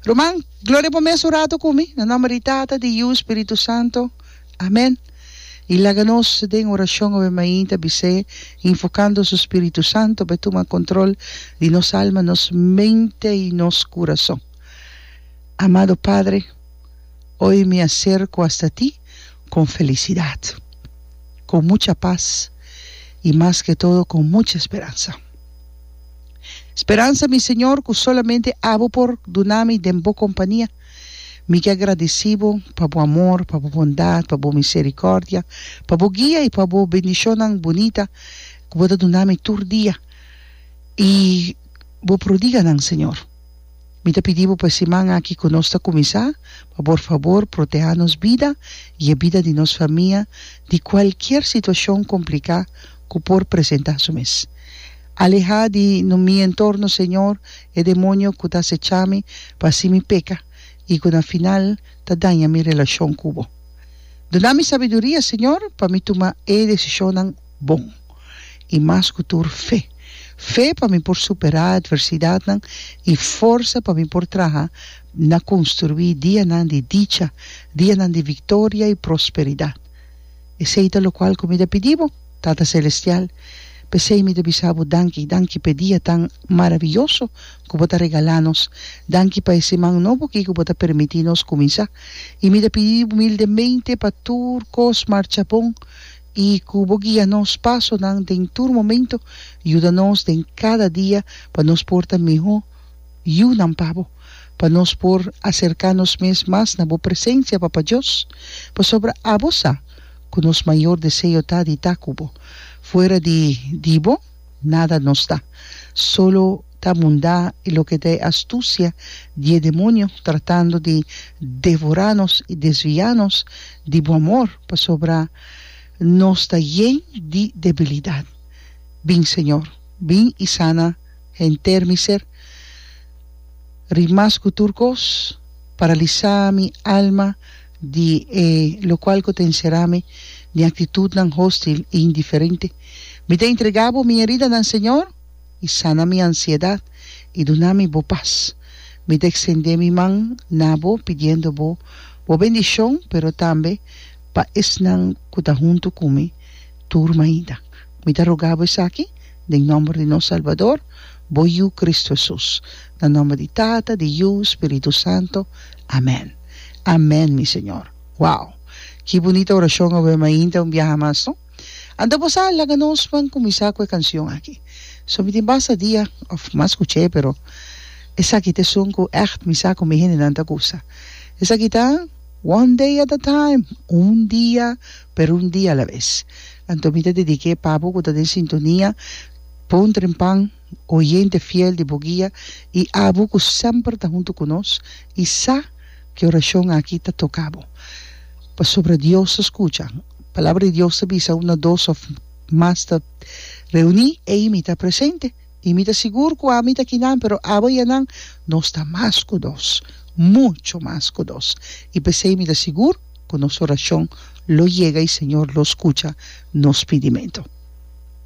Ruman, gloria por mes un rato cu mi, na nombre di Tata, di Yu, Spiritu Santo. Amen. Y laga nos den oracion awe mainta bis'e, invocando su Spiritu Santo p'e tuma control di nos alma, nos mente y nos curason. Amado Padre, hoy mi acerco hasta ti con felicidad, con mucha paz y mas que todo con mucha esperanza. Speransa, mi Señor, cu solamente abo por duna mi den bo compania. Mi ke agradeci bo pa bo amor, pa bo bondad, pa bo misericordia, pa bo guia y pa bo bendicionnan bunita cu bo ta duna mi tur dia y bo prodiga nan, Señor. Mi ta pidi bo pa e siman aki cu nos ta cuminsa pa por fabor proteha nos bida y e bida di nos famia di cualkier situacion complica, ku por presentá su mes. Alehá di no mi entorno, Señor, e demonio ku ta asechá mi pa hasi mi peka i ku na final ta daña mi relashon ku bo. Duna mi sabiduria, Señor, pa mi tuma e desishonnan bon. I mas ku tur fe, fe pa mi por superá adversidatnan i forsa pa mi por traha na konstruí dianan di dicha, dianan di viktoria i prosperidat. Esei ta lokual ku mi ta pidi bo, Tata Selestial. P'esei mi ta bisa bo danki, danki p'e dia tan maravioso ku bo ta regalá nos, danki pa e siman nobo aki ku bo ta permití nos kuminsá. I mi ta pidi bo humildemente pa tur kos marcha bon i ku bo guia nos pasonan den tur momento. Yuda nos den kada dia pa nos por ta mihó yunan pa bo. pa nos por acerca nos mes mas na bo presencia, Papa Dios, pasobra abo sa cu nos mayor deseo ta di ta cu bo. Fuera di di bo nada nos ta, solo ta munda y loke ta e astucia di e demonio tratando di devora nos y desvia nos di bo amor, pasobra nos ta yen di debilidad. Bin, Señor, bin y sana henter mi ser. rimas cu tur cos, paralisa mi alma di e locual cu ta encerá mi den actitudnan hostil i indiferente. Mi ta entregá Bo mi eridanan, Señor, i sana mi ansiedad, i duna mi Bo pas. Mi ta extendé mi man na Bo pidiendo Bo Bo bendicion, pero tambe pa esnan cu ta hunto cu mi tur mainta. Mi ta rogá Bo esaki. Den nòmber di nos Salbador, bo Yu Kristu Hesus. Na nòmber di Tata, di Yu, Spiritu Santo. Amèn. Amèn, mi Señor. Wow! Ki bunita orashon awe mainta un biaha mas, no? Anto bo sa, laga nos pan kuminsá ku e kanshon aki. So mi tin basta dia òf mas kuch'é, pero esaki ta esun ku ègt mi sa ku mi hendenan ta kusa. Esaki ta, One day at a time, un dia pero un dia a la bes. Anto mi ta dedica e papo cu ta den sintonia, Bon Trempan, oyente fiel di bo guia y abo cu semper ta hunto cu nos y sa cu e oracion aki ta toca bo. Pasobra Dios ta scucha. Palabra di Dios ta bisa, Unda dos of mas ta reuni, ey mi ta presente. I mi ta sigur ku ami ta kinan, pero abo i anan nos ta mas ku dos, mucho mas ku dos. I p'esei mi ta sigur ku nos orashon lo yega i Señor lo skucha nos pidimentu.